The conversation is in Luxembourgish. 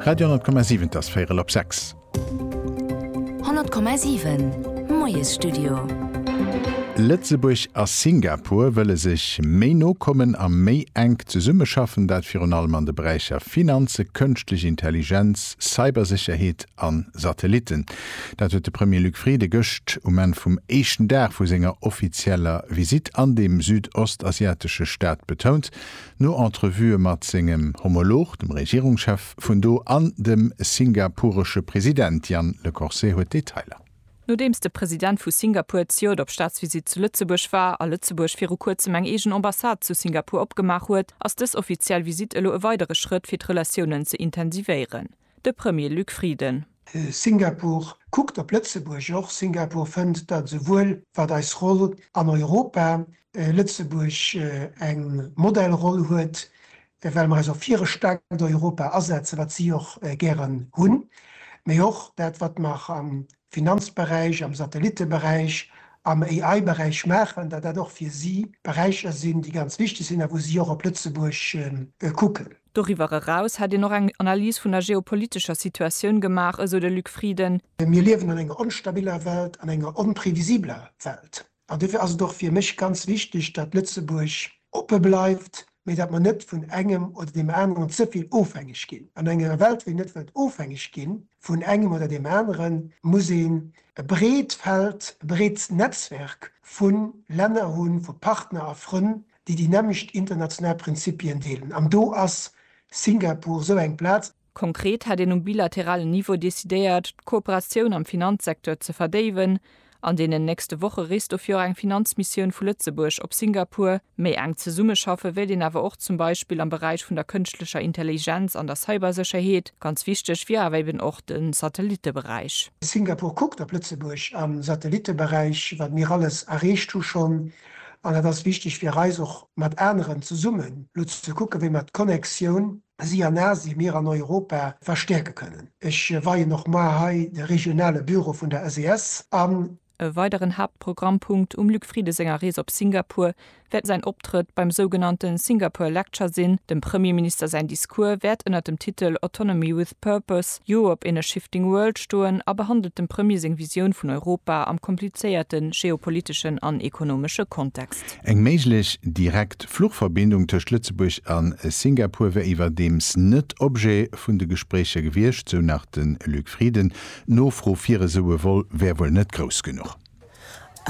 Radio 10,7 't ass véierel op sechs. 100,7 Moiesstudio. Lëtzebuerg a Singapur wëlle sech méi no kommen a méi enk zesummeschaffen, dat virun allem an de Beräicher Finanze, Kënschtlech Intelligenz, Cybersécherheet a Satellitten. Dat huet de Premier Luc Frieden gëscht um Enn vum éischten Dag vu senger offizieller Visitt an deem südostasiatesche Staat betount. No Entrevuë mat sengem Homolog, dem Regierungschef vun do, an dem singapuresche President Jan Le Corset huet d'Detailer. Nodeems de President vu Singapur d'Ciot op Staatsvisitt zu Lëtzebuerg war a Lëtzebuerg viru kuerzem eng eegen Ambassade zu Singapur opgemaach huet, ass dës offiziell Visitt elo e weidere Schrëtt fir d'Relatiounen ze intensivéieren. de Premier Luc Frieden. Singapur kuckt op Lëtzebuerg och. Singapur fënnt, datt esouwuel wat eis Roll an Europa, Lëtzebuerg eng Modellroll huet, well mer eis och fir e staarkt Europa asetzen, wat si och gären hunn, mee och dat wat mer am Finanzberäich, am Satellitteberäich, am AI-Beräich maachen, datt dat och fir si Beräicher sinn, déi ganz wichteg sinn a wou si och op Lëtzebuerg kucken. Doriwwer eraus hätt een och eng Analys vun der geopolitescher Situatioun gemaach, esou de Luc Frieden. Mir liewen an enger onstabiler Welt, an enger onprevisibeler Welt. An dofir ass et och fir mech ganz wichteg, datt Lëtzebuerg oppe bleift, mee datt mer net vun engem oder deem aneren ze vill ofhängeg ginn. An enger Welt, wou een net wëllt ofhängeg gi vun engem oder deem aneren, muss een e breet Feld, e breet Netzwerk vu Länner hunn, vu Partner a Frënn, déi déi nämmlecht international Prinzipien deelen, an do ass Singapur esou eng Plaz. Konkret hätt een um bilateralen Niveau decidéiert, d'Kooperatioun am Finanzsecteur ze verdéiwen. An deenen nächste Woche reest dofir och eng Finanzmissioun vu Lëtzebuerg op Singapur. Méi enk zesummeschaffe wéilt een awer och zum Beispill am Beräich vun der kënschtlecher Intelligenz an der Cybersécherheet. Ganz wichteg wier awer eben och de Satellitteberäich. Singapur kuckt op Lëtzebuerg am Satellitteberäich, wat mir alles erreecht hu schonn, An et ass wichteg fir eis och mat aneren zesummen elo ze kucken, wéi mer d'Connexioun, si an Asien, mir an Europa, verstäerke kënnen. Ech weien och mar hei de regionale Büro vun der SES an. E weideren Haaptprogrammpunkt um Luc Frieden senger Rees op Singapur wäert säin Optrëtt beim sougenannte Singapore Lecture sinn. Dem Premierminister säin Discours wäert ënnert dem Titel Autonomy with. Purpose, Joe op In a Shifting World stoen a behandelt dem Premier seng Visioun vun Europa am komplizéierte geopoliteschen an ekonomesche Kontext. Eng méiglech direkt Fluchverbindung tëscht Lëtzebuerg a Singapur wär iwwerdeems net Objet vun de Gespréicher gewiescht, sou nach de Luc Frieden. D'Nofro fir esou e Vol wär wuel net grouss genuch.